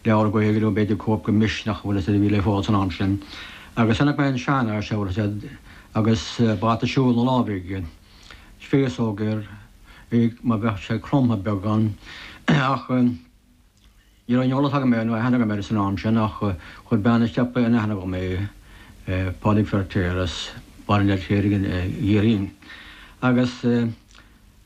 leabhar Gaeilge nó b'fhéidir cóip de Misneach an bhfuil a fhios agat a bhí le fáil san am sin agus chonaic mé an seanfhear seo an bhfuil a fhios agat agus bata siúil ina lámh aige, féasóg air, mar bheadh sé cromtha beagán ach ní raibh aon eolas agam air nó aithne agam air san am sin ach chuir bean an tsiopa in aithne dhom é, Pádraig Feirtéar as Baile an Fheirtéaraigh i gCiarraí agus.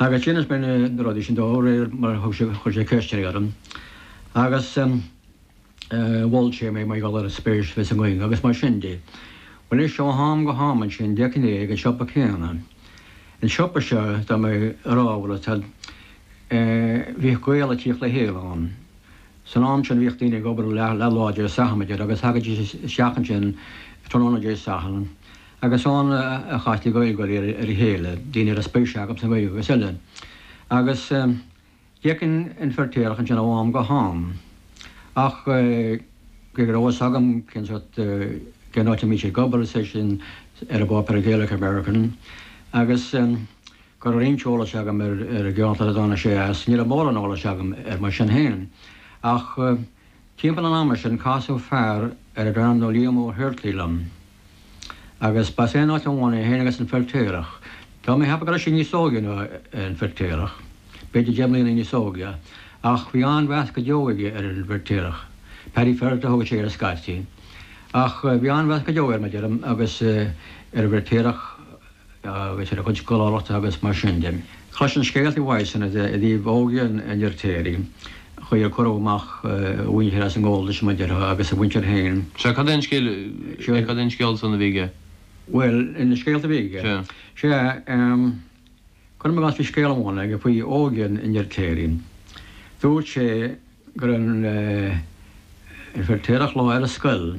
Agus d'inis mé na rudaí sin dó réir mar a thug sé, chuir sé ceisteanna orm agus mhol sé mé mar gheall ar an spéis a bhí sa nGaeilge agus mar sin de. Bhuel, anois ó ham go ham ansin, d'fheicinn é ag an siopa céanna. An siopa seo, atá mé a rá an bhfuil a fhios agat, bhíodh Gaeil ag tíocht le chéile ann. San am sin bhíodh daoine ag obair leath lá Dé Sathairn, adeir, agus thagaidís isteach ansin tráthnóna Dé Sathairn, agus ann a chastaí Gaeilgeoirí ar a chéile, daoine a raibh spéis acu sa nGaeilge agus eile. Agus d'fheicinn an Feirtéarach ansin ó am go ham. Ach, cé go raibh fhios agam cén áit, cén áit a mbíodh sé ag obair, is é sin ar an bpáipéar Gaelic American, agus go raibh roinnt eolais agam ar an gceantar a dtáinig sé as, ní raibh mórán eolais agam air mar sin féin. Ach. Timpeall an ama sin casadh fear darbh ainm dó Liam Ó hUirtlí liom, agus ba as aon áit amháin é féin agus an Feirtéarach. Tá mé ag ceapadh go raibh sé níos óige ná an Feirtéarach, b'fhéidir deich mbliana níos óige, ach bhí an-mheas go deo aige ar an bhFeirtéarach. Paddy Ferriter a thugadh sé air scaití, ach bhí an-mheas go deo air, mar deirim, agus ar an bhFeirtéarach. agus ar a chuid scoláireachta agus mar sin de. Chloisinn scéalta uaidh san i dtaobh óige an Fheirtéaraigh, chaoi ar cuireadh amach a mhuintir as a ngabháltas mar déarfá agus a mhuintir féin. Sea, cad é an scéal, sea, cad é an scéal san a bhí aige? Bhuel, na scéalta a bhí aige? Sea. Sea, cuirim i gcás bhí scéal amháin aige faoi óige an Fheirtéaraigh. Dúirt sé go raibh an Feirtéarach lá ar scoil,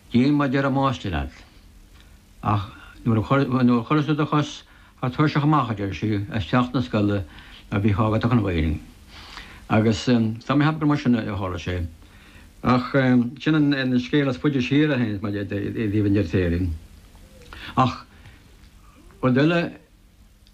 Déan mar a deir an máistir leat. Ach nuair a chuireas tú do chos thar tairseach amach, a deir sí, as teach na scoile a bhíodh á gcur in Éirinn. Agus tá mé ag ceapadh gur mar sin a tharla sé. Ach sin an scéal is faide siar a théanns maidir i dtaobh an Fheirtéaraigh. Ach rud eile.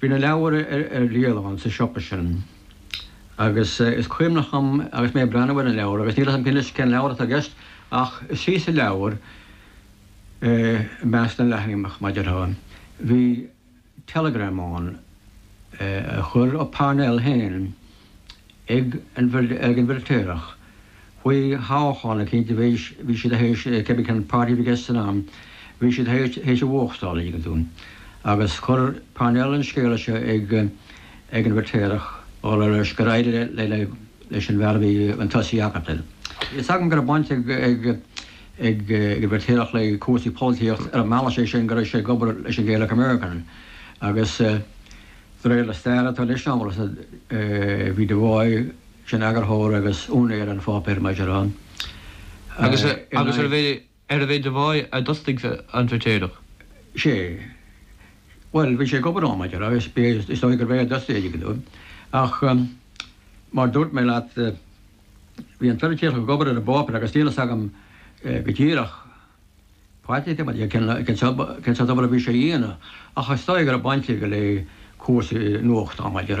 Bhí na leabhair ar díol ann sa siopa sin agus is cuimhneach dhom agus mé ag breathnú ar na leabhair, agus níl a fhios a'm anois cén leabhar atá i gceist, ach istigh sa leabhar, i measc na leathanach, mar déarfá, bhí teileagram ann a chuir Parnell féin ag an bhFeirtéarach. Faoi thoghchán cinnte bhí s, bhí siad théis cébí cén páirtí a bhí i gceist san am, bhí siad théis a bhuachtáil, an dtuigeann tú. Agus chuir Parnell an scéala seo ag ag an bhFeiritéarach a rá leis gur éirigh le le le leis an bhfear a bhí chun tosaigh acu. Tá a fhios agam go raibh baint ag ag ag ag an bhFeiritéarach le cúrsaí polaitíocht ar an mbealach sé sin go raibh sé ag obair leis an Gaelic American agus De réir na staire atá leis an amhras a bhí Devoy ina eagarthóir agus úinéir an pháipéir maidir ann, Agus agus arbh é arbh é Devoy a d'fhostaigh an Freitéireach? sé. Bhuel, bhí sé ag obair ann maidir le, is b'fhéidir, is dóigh gurbh é a d'fhostaigh é ar ndóigh, ach mar dúirt mé leat, bhí an Feiritéarach ag obair ar an bpáipéar agus níl a fhios agam go díreach. Patrick, Bhuel, cén sórt obair a bhí sé a dhéanamh ach is dóigh go raibh baint aige le cúrsaí nuachtáin, maidir.